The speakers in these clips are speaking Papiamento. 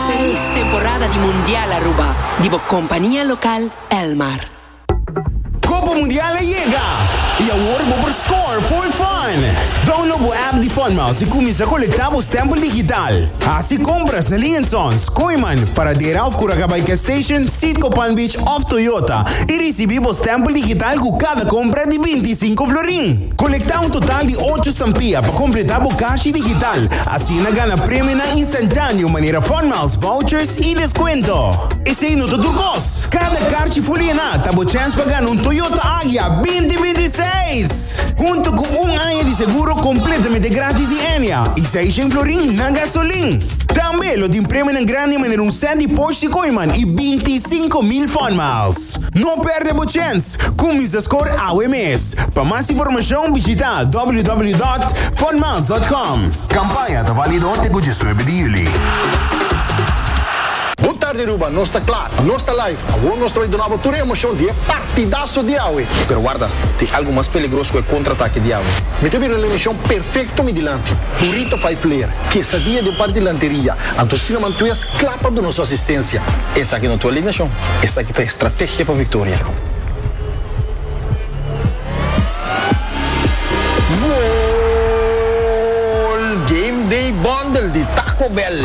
Felis temporada di Mundial Aruba di bo compania local Elmar. Copa Mundial a yega y awor bo por score full fun! Download bo app di Funmouse y cuminsa colecta bo stempel digital. Haci compras na Lin & Sons, Kooiman, Paradera of Curacabai Gas Station, Citgo Palm Beach of Toyota y ricibi bo stempel digital cu cada compra di binti i sinku florin. Colecta un total di ocho stampia pa completa bo cashi digital. Si e na gana premionan instantáneo manera funmiles, vouchers i deskuento. Esei no ta tur kos. Kada karchi fuliená ta bo chèns pa gana un Toyota Agya binti binti seis, huntu ku un aña di seguro kompletamente grátis di Enya i seis shen florin na gasolin. Tambe lo tin premionan grandi manera un sèt di Porsche Cayman i binti sinku mil funmiles. No perde bo chens! Cuminsa scor awe mes! Pa mas informacion bishita www.funmiles.com. Campaña ta valido te cu diesnuebe di juli. Good tarde Aruba, nos ta kla, nos ta live. Awor nos ta bai donaba tur e emocion di e partidaso di awe. Pero warda, tin algo mas peligros cu e contraatake di awe. Mi ta bira na e mision perfecto mi dilanti. Burrito fai flair, quesadia den parti lanteria. Anto Cinnamon Twist, Kla pa duna su asistensia. Esaki no ta alineashon, esaki ta estrategia pa viktoria. Goal! Game Day Bundle di Taco Bell.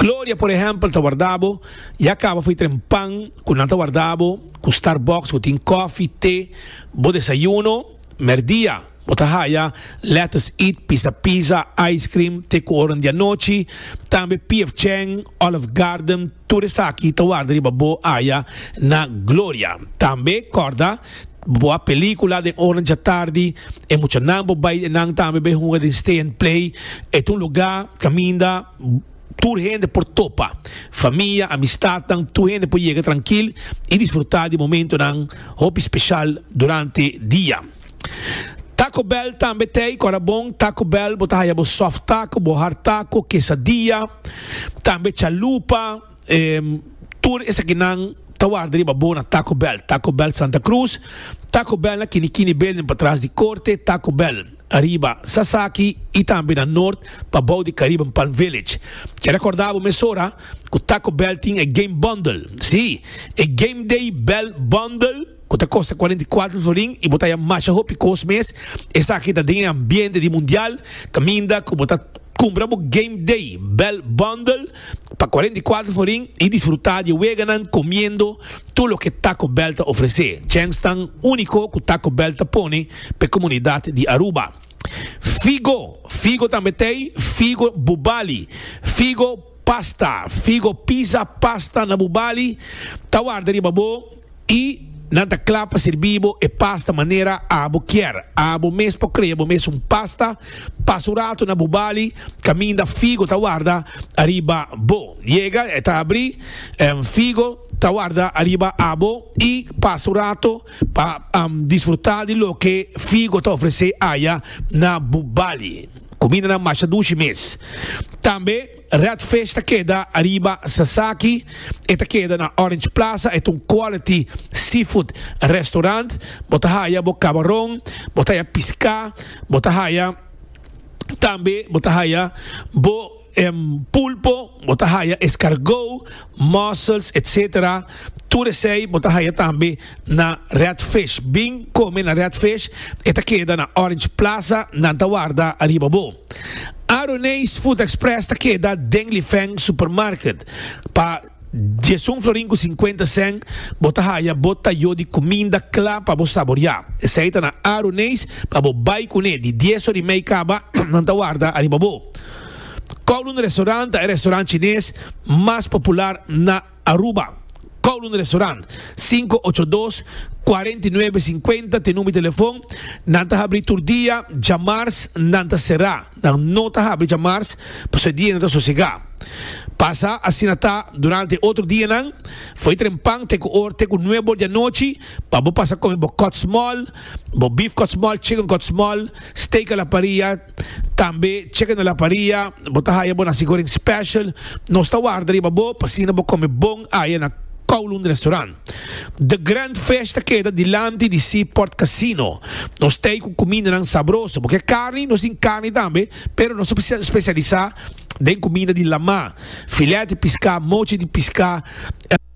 Gloria, por ehempel, ta warda bo y a caba fo'i tren pan cu nan ta warda bo cu Starbucks cu tin cofi, te, bo desayuno. Merdia, bo ta haya lettuce eat, pisa pizza, ice cream, te cu oran di anochi. Tambe PF Chang, Olive Garden, tur esaki ta warda riba bo aya na Gloria. Tambe, corda, bo a pelicula den oran djatardi, e muchanan bo bay enan tambe bay hunga den Stay and Play. E ta un lugar caminda. Tur hende por topa. Famia, amistadnan, tur hende por yega trankil i disfrutá di momentonan hopi speshal durante dia. Taco Bell tambe t'ei kòrda bon. Taco Bell bo ta haya bo soft taco, bo hard taco, kesadia, tambe chalupa. Tur esakinan ta warda riba bo na Taco Bell, Taco Bell Santa Cruz, Taco Bell na Kini Kini Building patras di Korte, Taco Bell riba Sasaki i tambe na Nort pa bou di Caribbean Palm Village. Ke rekorda bo mesora ku Taco Bell tin e Game Bundle, si, e Game Day Bell Bundle. cu ta costa cuarenta y cuatro florin y bo ta haya masha hopi cos mes, esaki ta den e ambiente di Mundial, caminda cu bo ta cumpra bo Game Day Bell Bundle pa cuarenta y cuatro florin y disfruta di e weganan comiendo tur loke Taco Bell ta ofrece. Chens tan unico cu Taco Bell ta pone pa e comunidad di Aruba. Figo, figo tambe t'ey, figo bubali, figo pasta, figo pizza pasta na bubali ta warda riba bo. Y nan ta cla pa sirbi bo e pasta manera abo kier. Abo mes por crea bo mes un pasta. Pasa un rato na bo bali caminda figo ta warda ariba bo. Yega e ta abri, figo ta warda ariba abo y pasa un rato pa disfruta di loke figo ta ofrece aya na bo bali. Cumindanan masha dushi mes. Tambe. Red Fish ta keda ariba Sasaki, e ta keda na Orange Plaza, e ta un quality seafood restaurant, bo ta haya bo cabaron, bo ta haya pisca, bo ta haya tambe bo ta haya bo pulpo, bo ta haya escargot, mussels etc. Tur esey bo ta haya tambe na Red Fish, bin come na Red Fish, e ta keda na Orange Plaza, nan ta warda ariba bo. Aroneis Food Express ta keda den Lifeng Supermarket. Pa diesun florin ku sinkuenta sèn bo ta haya bo tayó di kuminda kla pa bo saboriá. Esei ta na Aroneis pa bo bai kuné di dies or i mei kaba nan ta warda ariba bo. Kowloon Restaurant ta e restaurant chines mas popular na. Aruba, Kowloon Restaurant, sinku ocho dos, kuarenta i nuebe sinkuenta t'e number di telefon, nan ta habri tur dia, djamars nan ta será, nan no ta habri djamars pasobra e dia nan ta sosegá. Pasa asina ta durante e otro dianan, fo'i trempan te ku or te ku nuebe or di anochi pa bo pasa kome bo kòtsmòl, bo beef kòtsmòl, chicken kòtsmòl, steak a la parrilla, Tambe cheque na la paria, bo ta haya bo naci goreng special, nos ta warda riba bo pa asina bo come bon aya na Kowloon Restaurant. The Grand Fish ta keda dilanti di Seaport Casino. Nos t'ey cu cumindanan sabroso. Bo ke carni, nos tin carni tambe, pero nos ta specialisa den cuminda di lamá. filet di piská, mochi di piská,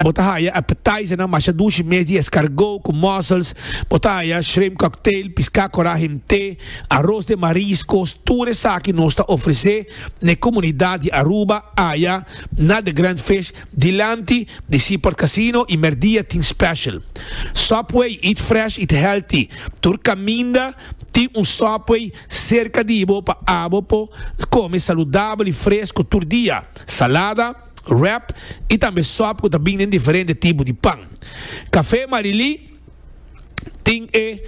bo ta haya appetizernan masha dushi mes di escargot cu mussels, bo ta haya shrimp cocktail, piská corá himté, aros den mariscos, tur esaki nos ta ofrecé na e comunidad di Aruba aya na The Grand Fish dilanti di Seaport Casino y merdia tin special Subway, eat fresh, eat healthy, tur caminda tin un Subway. Serka di bo pa abo por kome saludabel i fresku tur dia, salada, wrap i tambe sòp ku ta bin den diferente tipo di pan. Kafé Marilí tin e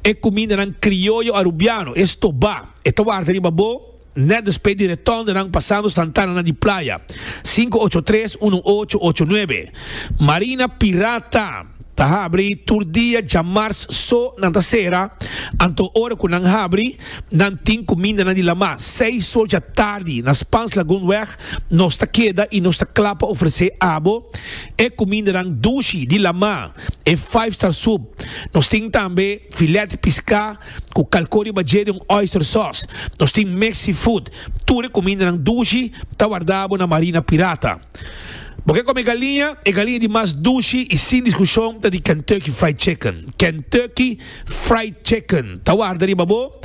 e kumindanan krioyo arubiano, e stobá. E ta warta riba bo nèt despues di retondonan pasando santananan di playa. Sinku ocho tres unu ocho ocho nuebe. Marina Pirata. Ta habri tur dia dja mars so nan ta sera, anto ora cu nan habri nan tin cu minda nan di lama. Seis so dja tardi na Spaans Lagoon weg nos ta keda y nos ta cla pa ofrece abo e cumindanan dushi di lama, e five star soup. Nos tin tambe filet pisca cu calco riba dje den un oyster sauce. Nos tin mexi food. Tur e cumindanan dushi ta wardabo na Marina Pirata. Bo ke come galiña? E galiña di mas dushi y sin discusion ta di Kentucky Fried Chicken. Kentucky Fried Chicken ta warda riba bo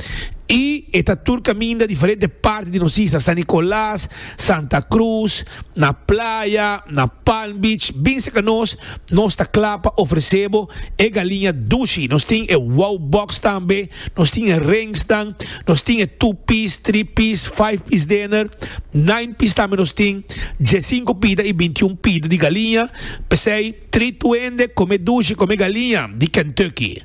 y e ta tur caminda diferente parti di nos isla, San Nicolas, Santa Cruz, na playa, na Palm Beach, bin cerca nos, nos ta cla pa ofrece bo e galiña dushi. Nos tin e Wow Box tambe. Nos tin e rengsnan, nos tin e two piece, three piece, five piece dener, nine piece tambe nos tin, diesinco pida y bintiun pida di galiña, p'esey three tuende come dushi come galiña di Kentucky.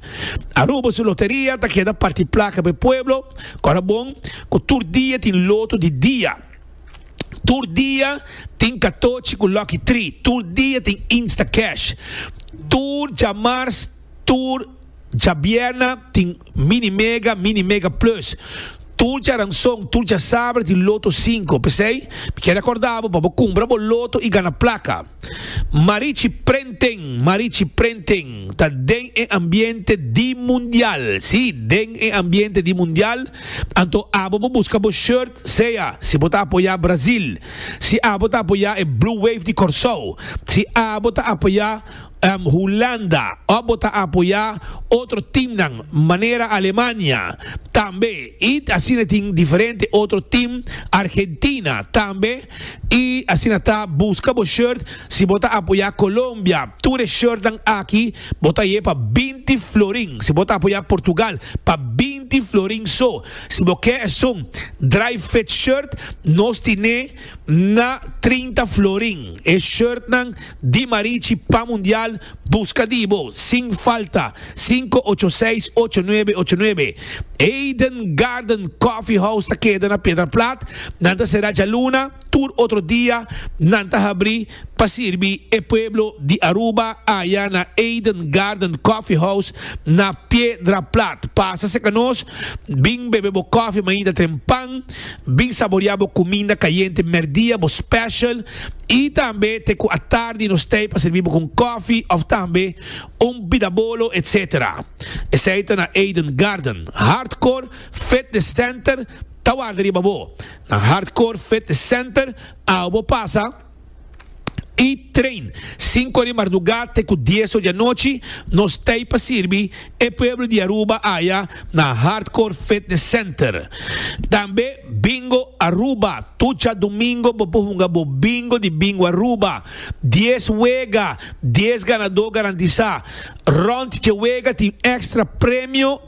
Aruba su loteria ta keda parti placa p'e pueblo, cu ora bon cu tur dia tin loto di dia, tur dia tin catochi cu lucky three, tur dia tin Instacash, tur djamars, Tur djabièrna tin Mini Mega, Mini Mega Plus. Tur djaranson, tur djasaber tin Loto Sinku. P'esei, mi kere akorda bo pa bo kumpra bo loto i gana plaka. Marichi Prenting, Marichi Prenting ta den e ambiente di mundial. Sí, den e ambiente di mundial. Anto abo bo buska bo shirt, sea si bo ta apoyá Brazil, si abo ta apoyá e Blue Wave di Kòrsou, si abo ta apoyá. Hulanda, òf bo ta apoyá otro timnan manera Alemania tambe i asina tin diferente otro tim, Argentina tambe i asina ta buska bo shirt si bo ta apoyá Colombia tur e shirtnan aki bo ta ye pa binti florin si bo ta apoyá Portugal pa binti florin so si bo ke esun dry fit shirt nos tin'é. Na trinta florin e shirtnan di Marichi pa Mundial buska di bo sin falta sinku ocho seis ocho nuebe ocho nuebe Eden Garden Coffee House ta keda na Piedra Plat Nan ta sera djaluna tur otro dia nan ta habri pa sirbi e pueblo di Aruba aya na Eden Garden Coffee House na Piedra Plat pasa seka nos bin bebe bo coffee mainta tren pan Bin saborea bo cuminda cayente merdia, bo special, y tambe te cu atardi nos tey pa servi bo cu un cofi of tambe un bidabolo etc. Esey ta na Eden Garden, Hardcore Fitness Center ta warda riba bo. Na Hardcore Fitness Center awo bo pasa. y train cinco di marduga te cu diez ora di anochi nos tey pa sirbi e pueblo di Aruba aya na Hardcore Fitness Center tambe Bingo Aruba tucha domingo bo por hunga bo bingo di Bingo Aruba diez wega diez ganado garantisa rond dje wega tin extra premio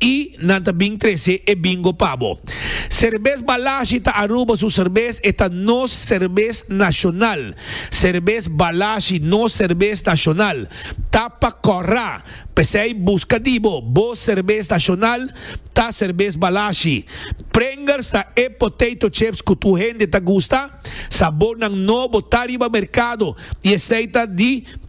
I nan ta bin trese e bingo pa bo. Serbes Balashi ta Aruba su serbes, e ta nos serbes nashonal. Serbes Balashi, nos serbes nashonal, ta pa kòrra. P'esei buska di bo, bo serbes nashonal ta serbes Balashi. Pringers ta e potato chips ku tur hende ta gusta. Sabornan nobo ta riba merkado i esei ta di.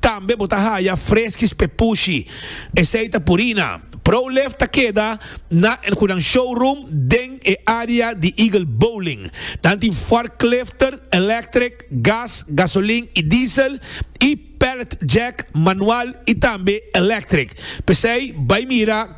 Tambe bo ta haya freskis p'e pushi. Esei ta Purina. ProLift ta keda na El Hunan Showroom den e área di Eagle Bowling. Nan tin forklifter, electric, gas, gasolin i diesel, i pallet jack, manual i tambe electric. P'esei bai mira.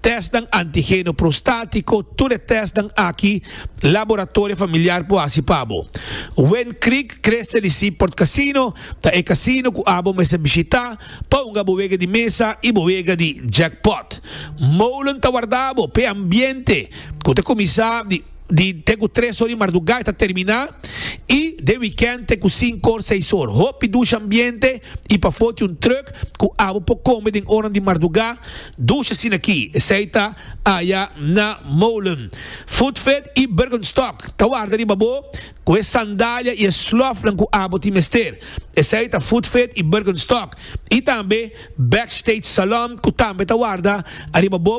tèstnan antigeno prostátiko, tur e tèstnan aki Laboratorio Familiar por hasi pa bo. Wind Creek Crest Tennessee Port Casino ta e casino cu abo mester bishita pa hunga bo wega di mesa y bo wega di jackpot. Molen ta warda bo p'e ambiente cu ta cuminsa di. Di te ku tres or di mardugá e ta terminá i den wikènt te ku sinku or, seis or. Hopi dusha ambiente i pafó tin un trùk ku abo por kome den ornan di mardugá. Dusha sinakí, esei ta aya na Molen, Footfed i Bergenstock. Ta warda riba bo ku e sandalia i e slòfnan ku abo tin mester. Esei ta Footfed i Bergenstock i tambe Backstage Salon ku tambe ta warda riba bo.